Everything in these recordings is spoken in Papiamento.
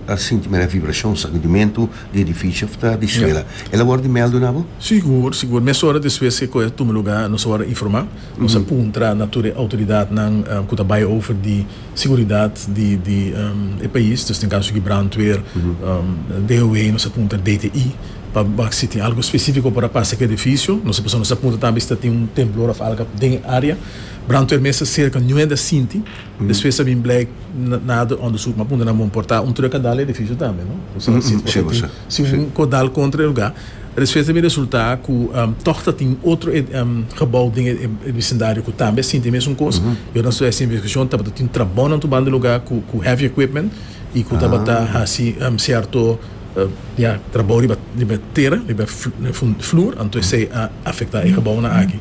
Ta sinti mera vibrashon, sakudimentu, di edifisio of ta di suela. El a wòrdu di mèldu na bo? Sigur, sigur. Mesora despues ku e kos a tuma lugá, nos a wòrdu informá. Nos a puntra na tur e outoridatnan ku ta bai over di siguridat di di e pais. Dus den kaso di brandweer, DOW, nos a puntra DTI pa wak si tin algu spesífiko por a pasa ku e edifisio. Nos a pasobra nos a puntra tambe si ta tin un temblor of algu den e área. Brandweer mes ta serka nuende a sinti. Despues ta bin blek na otro onderzoek, ma puntra na bon por ta un truck a dal edificio tambe no? Si un ko dal kontra e luga. Despues ta bin resulta ku tog ta tin otro gebou den e bisindario ku tambe a sinti e mesun kos. Yo nan studia e investigashon tabata tin trabounan tur banda e luga ku heavy equipment i ku tabata hasi sierto trabou riba tera, riba e floer, anto esei a afecta e gebounan aki.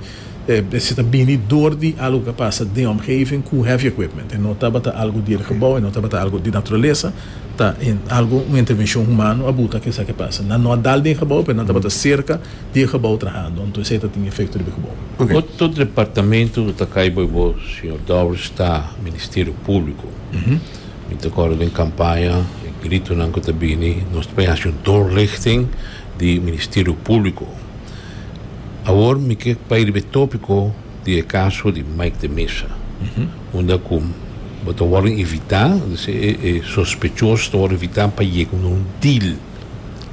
Si ta bini dor di algu ku a pasa den omgeving ku heavy equipment, e no tabata algu di e gebou, e no tabata algu di naturalesa, ta algu, un intervenshon humano a buta ku esaki a pasa. Nan no a dal den e gebou, pero nan tabata serka di e gebou trahando, anto esei ta tin efekto riba e gebou. Oto departamentu lo ta kai bo i bo, señor Dowrish, ta Ministerio Públiko. Mi ta kòrda den kampaña, e gritonan ku ta bini, nos ta bin hasi un doorlichting di Ministerio Públiko. Awor mi ke bai riba e topiko di e kaso di Mike de Mesa, unda ku bo ta wòrdu invitá, dise e sospechos ta wòrdu invitá pa yega na un deal,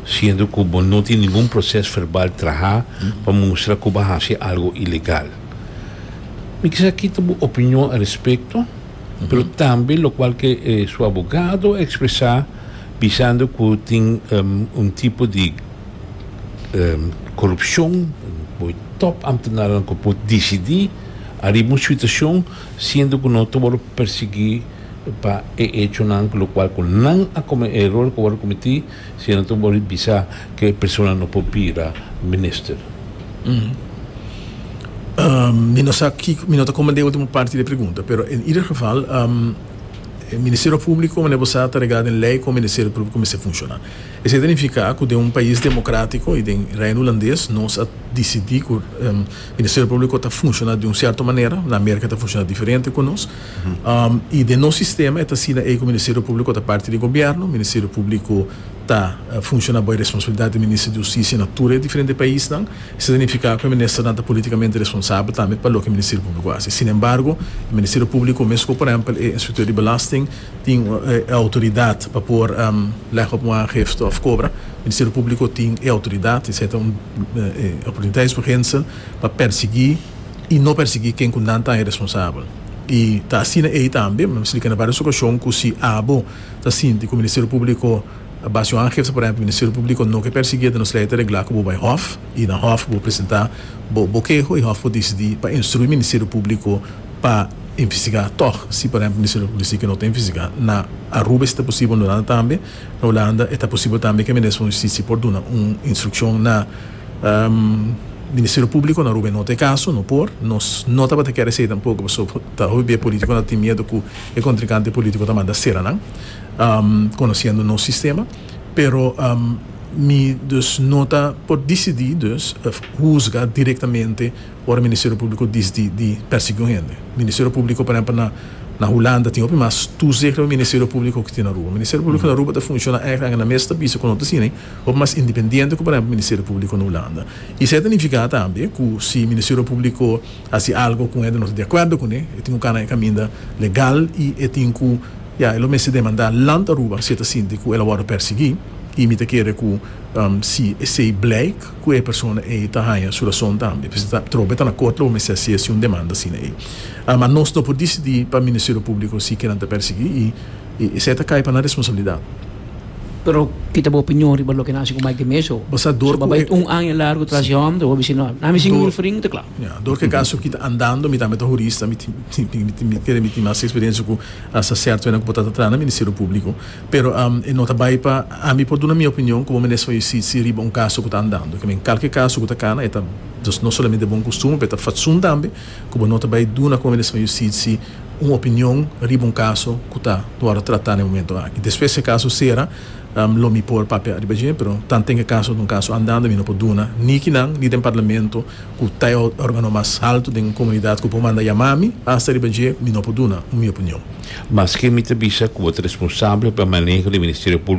siendo ku bo no tin ningun proses verbal trahá pa mustra ku bo hasi algu ilegal. Mi kisá kita bo opinion al respekto, pero tambe lokual ke su abogado a ekspresá bisando ku tin un tipo di. korupshon, bo e tòp amtenarenan ku por disidí ariba un situashon siendo ku no ta wòrdu persiguí pa e echonan ku lokual ku nan a e eror ku a wòrdu kometí si nan ta wòrdu bisá ku e persona no por bira minister. Mi no sa kiko, mi no ta komprendé e último parti di e pregunta, pero en ieder geval e Ministerio Públiko manera bo sa ta reglá den lei ku e Ministerio Públiko mester funshoná. Esei ta nifiká ku den un pais demokratiko i den Reino Hulandes nos a disidí ku Ministerio Públiko ta funshoná di un sierto manera, na Amerika ta funshoná diferente ku nos, i den nos sistema e ta asina ei ku Ministerio Públiko ta parti di gobièrnu, Ministerio Públiko ta funshoná bai responsabilidat di Minister di Hustisia na tur e diferente paisnan, esei ta nifiká ku e ministernan ta politikamente responsabel tambe pa loke Ministerio Públiko hasi. Sinembargo, e Ministerio Públiko, mesun ku por èmpel e Inspekteur di Belasting, tin e outoridat pa por lega op un aangifte of kobra. Ministerio Públiko tin e outoridat i seta un oportunitat des urgensel pa persiguí i no persiguí ken ku nan ta e responsabel. I ta asina ei tambe, mi a splika na vários okashon ku si abo ta sinti ku Ministerio Públiko a basa un aangifte, por ehèmpel, Ministerio Públiko no ke persiguí ta nos lei ta reglá ku bo bai hòf i na hòf bo presentá bo bo keho i hòf por disidí pa instruí Ministerio Públiko. pa investigá tòg. Si por ehèmpel Ministerio di Polisía ke no ta investigá, na Aruba esta posibel, na Holanda tambe, na Holanda e ta posibel tambe ke Minister van Justicia por duna un instrukshon na Ministerio Públiko, na Aruba e no ta e kaso, no por. Nos no tabata kere esei tampoko pasobra ku ta hopi bia polítiko nan tin miedu ku e kontrinkante polítiko ta manda sera nan, konosiendo nos sistema. Pero mi dus no ta por disidí, dus huzga direktamente. Ora Ministerio Públiko dis di di pèrsiguí un hende. Ministerio Públiko, por ehèmpel, na na Hulanda tin hopi mas tùzig riba Ministerio Públiko ku tin Aruba. Ministerio Públiko na Aruba ta funshoná èk angenan mes ta bisa ku no ta siña hopi mas independiente ku por ehèmpel Ministerio Públiko na Hulanda. I esei ta nifiká tambe ku si Ministerio Públiko hasi algu ku un hende no ta di akuerdo kuné e tin ku kana e kaminda legal i e tin ku ya e lo mester demandá Land Aruba si e ta sinti ku el a wòrdu pèrsiguí i mi ta kere ku si esei bleik ku e persona ei ta haña su rason tambe. P'esei ta trobe ta na kort lo bo mester hasi esi un demanda asina ei. Ma nos no por disidí pa Ministerio Públiko si ke nan ta persiguí i esei ta kai pa nan responsabilidat. Pero ki ta bo opinion riba loke nan hasi ku Mike di Meza? Bo sa dor ku e. Bo bai un aña largu tras di hòmber, bo bisini, Nan mi sin un refrin, ta kla. Ya, dor ku e kaso ki ta andando, mi tambe ta hurista, mi tin mi kere mi tin mas eksperensia ku asta sèrto hende ku bo ta ta traha na Ministerio Públiko. Pero e no ta bai pa ami por duna mi opinion ku bo mester fai usitsi riba un kaso ku ta andando. Ke men kalke kaso ku ta kana e ta dos no solamente bon kustumber pero e ta fatsun tambe ku bo no ta bai duna ku bo mester fai usitsi un opinion riba un kaso ku ta wòrdu tratá na e momento aki. Despues si e kaso sera lo mi por papia riba dje pero tanten ku e kaso ta un kaso andando mi no por duna ni kinan ni den parlamento ku ta e organo mas haltu den un komunidat ku por manda yamá mi, hasta riba dje mi no por duna un mi opinion. Maske mi ta bisa ku bo ta responsabel pa maneho di Ministerio Públiko,